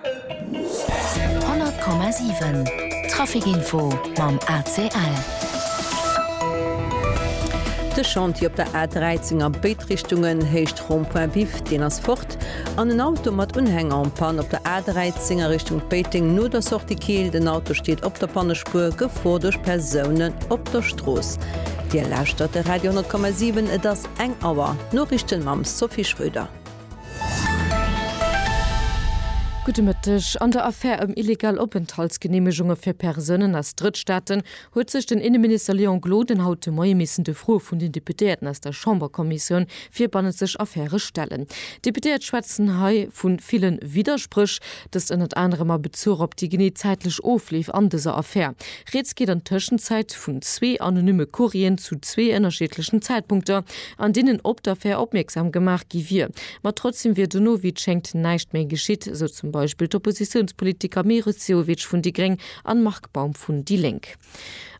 100,7 Trafic Info mam ACL. De Chantier op der A13 a béid Richtungen, Héicht Rond-Point Biff, deen ass fort an en Auto mat Unhänger en Panne op der A13 a Richtung Péiteng no der Sortie Keel. Den Auto steet op der Pannespuer, Gefor duerch Persounen op der Strooss. Dir lauschtert de Radio 10,7, et ass eng Auer. D'Noriichten mam Sophie Schröder. Gudde Mëtteg. An der Affär ëm illegal Openthaltsgeneemegunge fir Persounen aus Drëttstaaten huet sech den Inneminister Léon Gloden haut de Moie missen de Froe vun den Deputéierten aus der Chamberkommissioun fir bannenzeg Affäre stellen. D'Deputéiert schwätzen hei vu ville Widderspréch, dëst ënnert anerem a Bezuch op déi genee zäitlech Ofleef an dëser Affär. Rieds geet an Tëschenzäit vun zwee anonymme Courrieren zu zwee ënnerschiedlechen Zäitpunkter, an deenen op d'Affär opmierksam gemaach gi wier. Ma trotzdeem wier dono, wéi et schéngt, näischt méi geschitt, sou zum Beispill d'Oppositiounspolitiker Meris Sehovic vun déi Gréng an Marc Baum vun déi Lénk.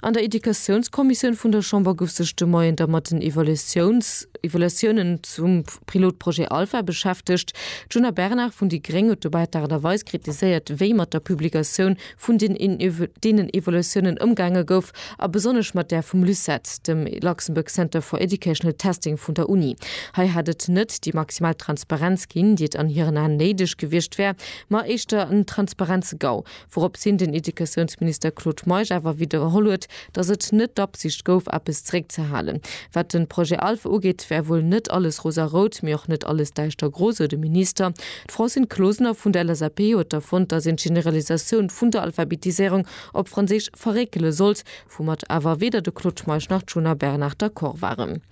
An der Educatiounskommissioun vun der Chamber gouf sech de Moien da mat den Evaluatiounen zum Pilotprojet Alpha beschäftegt. D'Djuna Bernard vun déi Gréng huet dobäi d'Aart a Weis kritiséiert, wéi mat der Publikatioun vun deenen Evaluatiounen ëmgaange gouf, a besonnesch mat där vum LUCET, dem Luxembourg Center for Educational Testing vun der Uni. Hei hätt et net déi maximal Transparenz ginn, déi et an hiren Aen néideg gewiescht wär, ma éischter en Transparenz-GAU, wourops hin den Educatiounsminister Claude Meisch awer widderholl huet, datt et net d'Absicht gouf, eppes zeréckzehalen. Wat de Projet ALPH ugeet, wär wuel net alles rosarout, mee och net alles däischtergro, sou de Minister. D'Francine Closener vun der LSAP huet da fonnt, datt een d'Generalisatioun vun der Alphabetiséierung op Franséisch verréckele sollt, woumat awer weder de Claude Meisch nach d'Djuna Bernard d'accord waren.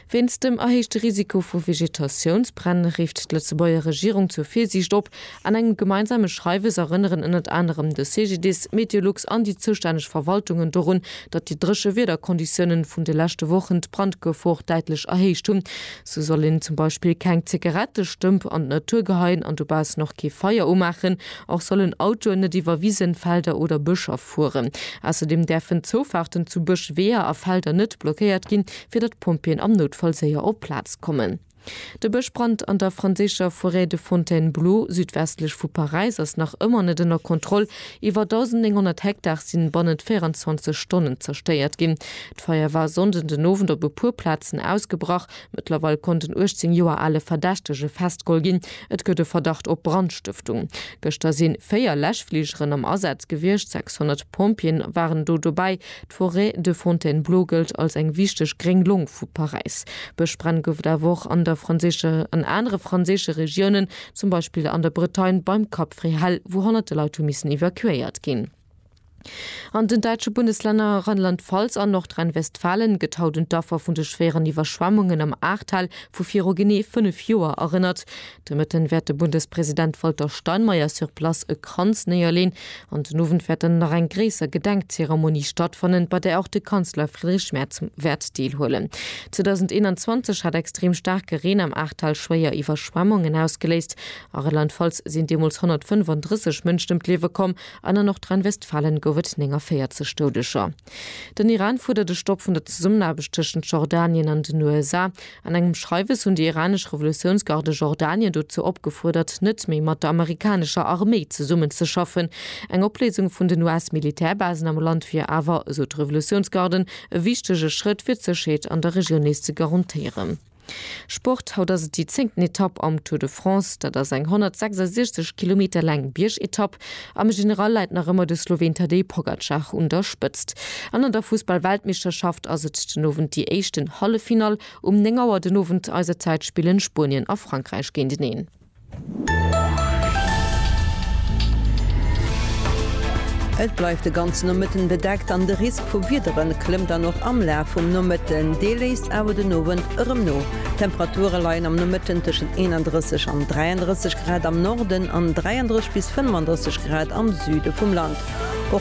Wéinst dem erhéichte Risiko vu Vegetatiounsbränn rifft d'Lëtzebuerger Regierung zur Virsiicht op. An engem gemeinsame Schreiwes erënneren ënnert anerem de CGDIS, Meteolux an déi zoustänneg Verwaltungen dorun, datt déi dréche Wiederkonditiounen vun de leschte Wochen d'Brandgefor däitlech erhéicht hunn. Sou soll een zum Beispill keng Zigarettestëmp an d'Natur geheien an dobaussen och kee Feier umaachen. Och sollen Autoen net iwwer Wisen, Felder oder Bëscher fueren. Ausserdem däerfen d'Zoufaarten zu Bësch, Weeër a Felder net blockéiert ginn, fir datt d'Pompjeeën am Noutfall séier op d'Plaz kommen. De Bëschbrand an der franséischer Forêt de Fontainebleau, südwestlech vu Paräis, ass nach ëmmer net ënner Kontroll. Iwwer 1.900 Hektar sinn bannent 24 Stonnen zerstéiert ginn. D'Feier war e Sonnden den Owend op e puer Plazen ausgebrach. Mëttlerweil konnt en 18 Joer ale Verdächtege festgeholl ginn. Et gëtt e Verdacht op Brandstëftung. Gëschter si 4 Läschfligeren am Asaz gewiescht, 600 Pompjeeën waren do dobäi. D'Forêt de Fontainebleau gëllt als eng wichteg gréng Long vu Paräis. Bëschbränn gouf et awer och an der franséischer an anere franséische Regiounen, zum Beispill an der Bretagne beim Cap Fréhel, wou honnerte Leit hu missen evakuéiert ginn. An den däitsche Bundeslänner Rheinland-Pfalz an Nordrhein-Westfalen gëtt haut un d'Affer vun de schwéieren Iwwerschwemmungen am Ahrtal vu viru genee 5 Joer erënnert. De Mëtten wäert de Bundespresident Walter Steinmeier sur place e Kranz néierleen an den Owend wäert dann nach eng gréisser Gedenkzeremonie stattfannen, bei där och de Kanzler Friedrich Merz wäert deelhuelen. 2021 hat extrem staarke Reen am Ahrtal schwéier Iwwerschwemmungen ausgeléist. A Rheinland-Pfalz sinn deemools 135 Mënschen ëm d'Liewe komm. An a Nordrhein-Westfalen gouf et 49 Doudeger. Den Iran fuerdert e Stopp vun der Zesummenaarbecht tëschent Jordanien an den USA. An engem Schreiwes hunn déi iranesch Revolutiounsgarde Jordanien dozou opgefuerdert, net méi mat der amerikanescher Arméi zesummenzeschaffen. Eng Opléisung vun den US-Militärbasen am Land wier awer, esou d'Revolutiounsgarden, e wichtege Schrëtt, fir d'Sécherheet an der Regioun nees ze garantéieren. Sport, Haut ass et déi zéngten Etapp am Tour de France. Dat ass eng 166 Kilometer laang Biergetapp. Am General läit nach ëmmer de Sloween Tadej Pogacar un der Spëtzt. An an der Fussball-Weltmeeschterschaft ass et den Owend déi éischten Halleffinall. Um 9 Auer den Owend eiser Zäit spillen Spuenien a Frankräich géinteneen. Et bleift de ganze Nomëtten bedeckt an de Risk vu Wiedere klëmmt dann och am Laf vum Nomëtten. Dee léisst awer den Owend erëm no. D'Temperature leien am Nomëtten tëschent 31 an 33 Grad am Norden an 33 bis 35 Grad am Süde vum Land.